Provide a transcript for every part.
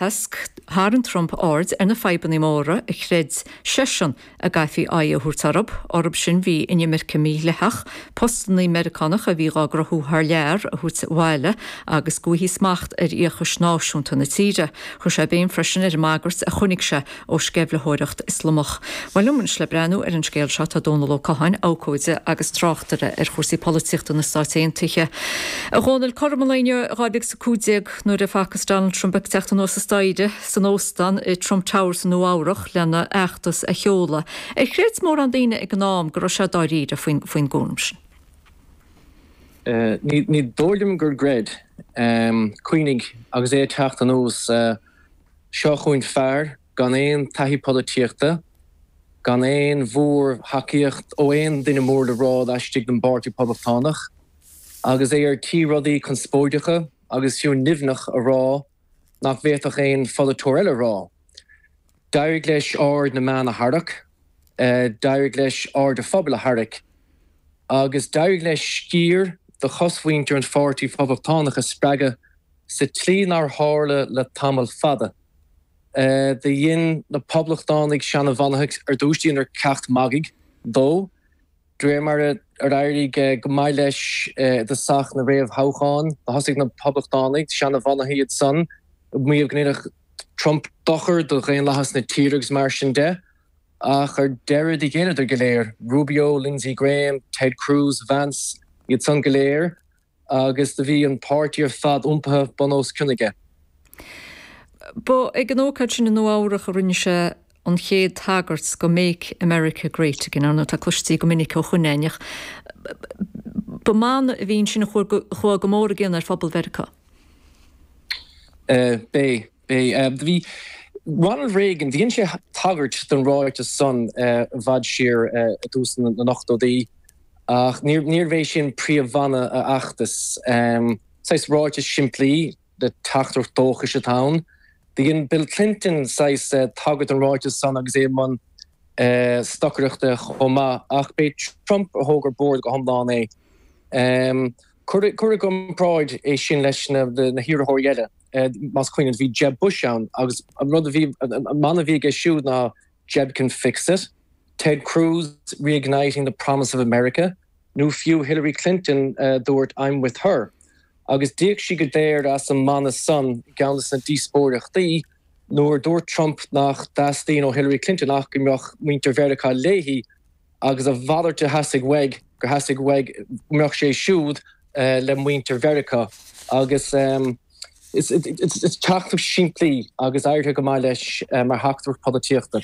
Tharraing Trump aird ar na fadhbannaí móra a chreid seisean go gcaithfí aghaidh a thabhairt orthu, orthu sin bhí inimirce mídhleathach, postannaí Meiriceánach a bhí dhá gcruthú thar lear a thabhairt abhaile agus go bhfaighfí smacht ar fhiacha náisiúnta na tíre. Chuir sé béim freisin ar an mbagairt a chonaic sé ó sceimhlitheoireacht Ioslamach. Liom anois le breathnú ar an scéal seo tá Dónall Ó Catháin, abhcóide agus tráchtaire ar chúrsaí polaitíochta na Stát Aontaithe, a Dhónaill, cothrom an lae inniu, 2015 nuair a facthas Donald Trump ag teacht anuas an staighre san óstán i Trump Tower i Nua-Eabhrac lena fheachtas a sheoladh, ar chreid mórán daoine ag an am go raibh sé dáiríre faoin gcúram sin? Ní dóigh liom gur chreid. Cuimhnigh, agus é ag teacht anuas sa. Seo chugainn fear gan aon taithí polaitíochta, gan aon mhór-thacaíocht ó aon duine mór le rá laistigh den bPáirtí Poblachtánach, agus é ar tí rudaí conspóideacha agus fiú nimhneach a rá nach bhféadfadh aon pholaiteoir eile a rá. D'éirigh leis aird na meán a tharrac, d'éirigh leis aird an phobail a tharrac, agus d'éirigh leis sciar de chosmhuintir an Pháirtí Phoblachtánach a spreagadh. sa tslí nár tharla le tamall fada. Do dhein na Poblachtánaigh seana-bhunaithe ar dtús dheineadar ceap magaidh de, de réir mar a d'éirigh go maith leis i dtosach na réamhthoghchán, do thosaigh na Poblachtánaigh, seana-bhunaithe, iad san, ag maíomh go ndéanfadh Trump dochar do dhaonlathas na tíre agus mar sin de, ach ar deireadh do ghéilleadar go léir, Rubio, Lindsey Graham, Ted Cruz, Vance, iad san go léir. Agus do bhí an páirtí ar fad iompaithe bun os cionn aige. Ba ag an ócáid sin i Nua-Eabhrac a rinne sé an chéad tagairt do Make America Great Again, ar ndóigh atá cloiste go minic ó shin againn, ach ba mana a bhí ansin a chuaigh go mór i gcion ar phobal Mheiriceá. B'é. B'é. Bhí Ronald Reagan, dhein sé tagairt don ráiteas san i bhfad siar i dtús na n-ochtóidí, ach níorbh é sin príomh-mhana a fheachtais. Saghas ráiteas simplí le teachtaireacht dóchais atá ann. Do dhein Bill Clinton saghas tagairt don ráiteas san agus é i mbun stocaireachta chomh maith, ach b'é Trump a thóg ar bord go hiomlán é. Cuir i gcomparáid é sin leis na hiarrthóirí eile, más cuimhin leat, bhí Jeb Bush ann agus an rud a bhí, an mana a bhí aige siúd ná Jeb can fix it, Ted Cruz, reigniting the promise of America, nó fiú Hillary Clinton a dúirt I'm with her. Agus d'íoc sí go daor as an mana san i gceann de na díospóireachtaí nuair a dúirt Trump nach dteastaíonn ó Hillary Clinton ach go mbeadh muintir Mheiriceá léi, Agus a mhalairt a theastaigh uaidh, gur theastaigh uaidh go mbeadh sé siúd le muintir Mheiriceá. Agus is teachtaireacht simplí í agus éirithe go maith leis mar theachtaireacht polaitíochta.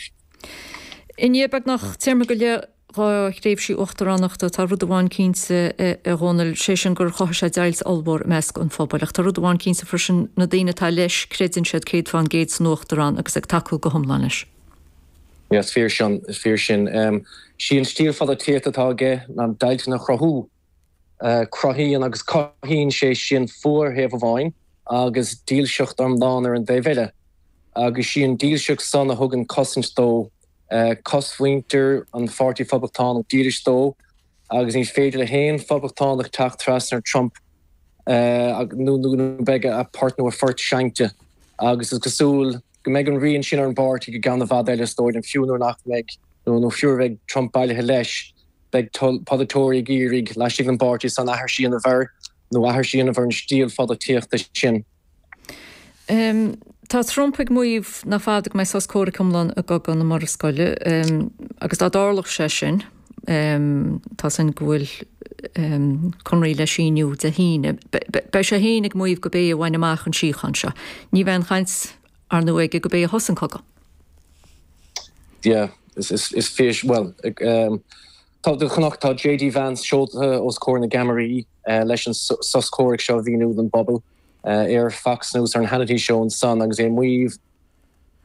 I ndiaidh beagnach téarma go leith dhá thréimhse uachtaránachta, tá rud amháin cinnte, a Dhónaill, sé sin gur chothaigh sé deighilt ollmhór i measc an phobail. Ach tá rud amháin cinnte freisin, na daoine atá leis, creideann siad céad fán gcéad san uachtarán agus ag tacú go hiomlán leis. Is fíor sin. Is fíor sin. Sí an stíl pholaitíochta atá aige ná deighilteanna a chruthú. Cruthaíonn agus cothaíonn sé sin fuath ar thaobh amháin agus dílseacht iomlán ar an dtaobh eile. Agus sí an dílseacht san a thugann cosaint dó, cosmhuintir an Pháirtí Phoblachtánach dílis dó. Agus ní féidir le haon phoblachtánach teacht trasna ar Trump nó go mbeidh a port nó a phort seinnte. Agus is cosúil go mbeidh an rian sin ar an bpáirtí go ceann i bhfad eile is dóigh liom, fiú nuair nach mbeidh, nó fiú nuair a bheidh Trump bailithe leis, beidh polaiteoirí ag iarraidh laistigh den bpáirtí san aithris a dhéanamh air nó aithris a dhéanamh ar an stíl pholaitíochta sin. Tá Trump ag maíomh nach fada go mbeidh sos comhraic iomlán i gcogadh na Murascaille, agus dá dtarlódh sé sin, táthar ag súil go bhfuil conradh le síniú Dé hAoine, beidh sé féin ag maíomh gurb é a bhain amach an síocháin seo. Ní bheidh aon chaint, ar ndóigh, aige gurb é a thosaigh an cogadh. Yeah, is fíor, bhuel, Tá dóchas ann, Tá JD Vance seolta os comhair na gceamaraí leis an sos comhraic seo a mhíniú don bpobal. Ar Fox News ar an Hannity Show ansan agus é ag maíomh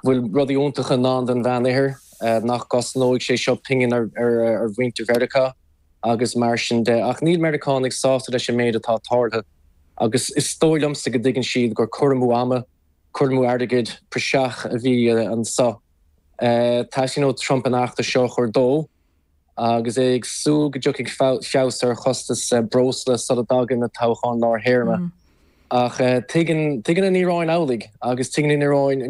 go bhfuil rudaí iontacha i ndán don Mheánoirthear, nach gcosnóidh sé seo pingin ar mhuintir Mheiriceá agus mar sin de. Ach níl Meiriceánaigh sásta leis an méid atá tarlaithe agus is dóigh liomsa go dtuigeann siad gur cur amú ama, cur amú airgid, praiseach a bhí anseo. Teastaíonn ó Trump an eachtra seo a chur de. agus é ag súil go dtiocfaidh feabhas ar chostas breosla sula dtagann na toghcháin lár-théarma. Ach tuigeann an Iaráin amhlaidh, agus tuigeann an Iaráin.